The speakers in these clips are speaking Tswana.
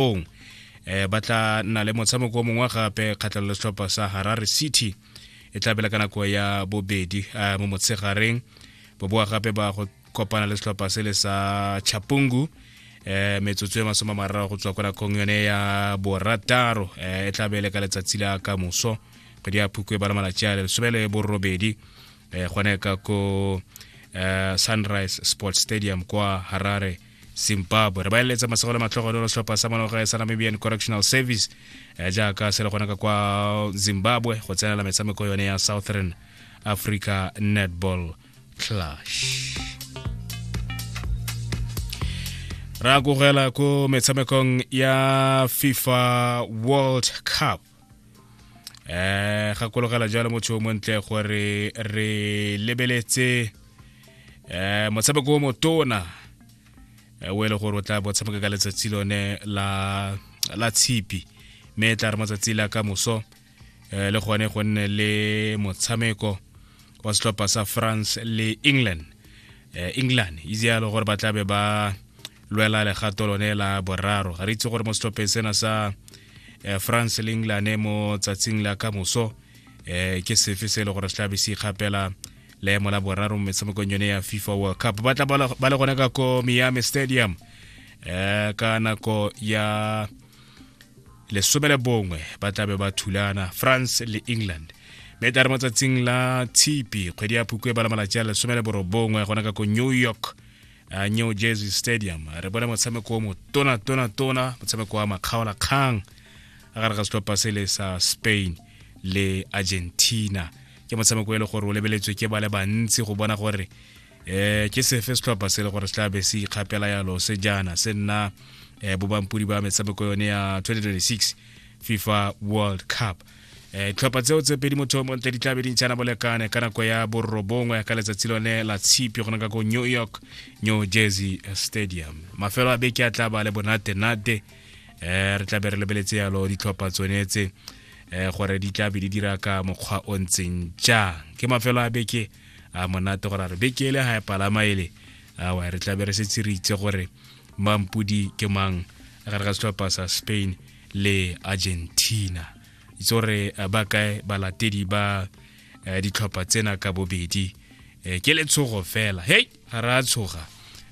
ong eh ba tla nna le motshameko mongwe gape kgatlhang le setlhopha sa harare city e tla bela ka nako ya bobedi eh, mo motshegareng boboa gape ba go kopana le setlhopha se le sa chapungu eh metsotso e masoma mararo go tswa kwa nakong yone ya borataro eh, e tla bele ka letsatsi la ka moso kgwedi ya phukwe ba le malatsi a lesome le borobedi eh gone ka ko eh, sunrise sports stadium kwa harare zimbabwe re ba eletsa masego le matlhogo le setlhopha sa maloga sa namibian correctional service eh, jaaka se le gona ka kwa zimbabwe go tsenela metshameko yone ya southern africa netball clash ra kogela ko metshamekong ya fifa world cup eh gakologela jalo motho o montle gore re lebeletse eh motshameko o motona eh, o e le gore o tla botshameka ka letsatsi lone la la tshipi mme e tla re matsatsi la ka moso eh, le gone go nne le motshameko wa setlhopha sa france le england eh, england itse yalo gore ba tlabe ba lwela legato lone la boraro ga re itse gore mo setlhopheng sena sa eh, france le england mo tsatsing la ka moso eh, ke sefe se e le gore se tlabe se ikgapela leemo la boraro mo metshamekong yone ya fifa world cup ba tla ba le gone ka ko miami stadium eh, ka nako ya lesome le bongwe ba tlabe ba thulana france le england mme tla re mo tsatsing la tshipi kgwedi ya phukwe ba la malatsi a lesome le borobongwe gona ka ko new york uh, new jersey stadium re bone motshameko o motona tona tona motshameko wa makgaola kgang a gare ga setlhopha se le sa spain le argentina ke motshameko e le gore o lebeletswe ke ba le bantsi go bona gore um ke sefe setlhopha se e le gore se tlabe se ikgapela yalo se jaana se nna um bobampodi ba metshameko yone ya 2026 fifa world cup Eh, tlhopha tseo tse pedi motho mo ntle di tla be di ntšhana bolekane ka nako ya borobongwe ka letsatsi lone la tshipi go naka ko new york new jersey stadium mafelo a beke a tla ba le bonate-nate um re tla be re lebeletse yalo ditlhopha tsone tse um gore di tla be di dira ka mokgwa o ntseng jang ke mafelo a beke a monate gore a re beke ele ga e palama ele awa re tla be re setse re itse gore mampudi ke mang gare ga setlhopha sa spain le argentina itse gore eh, ba kae balatedi ba eh, ditlhopha tsena ka bobedi eh, ke letshogo fela hei ga re a tshoga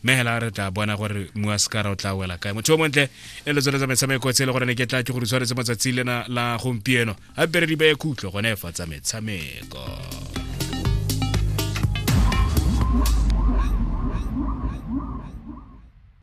mme hela re tla bona gore mua sekara o tla wela kae motho o montle e le tsone tsa metshameko tse e le gore ne ke tla ke gore tshwaretse matsatsi lena la gompieno ga pere di beye khutlo gone fa tsa metshameko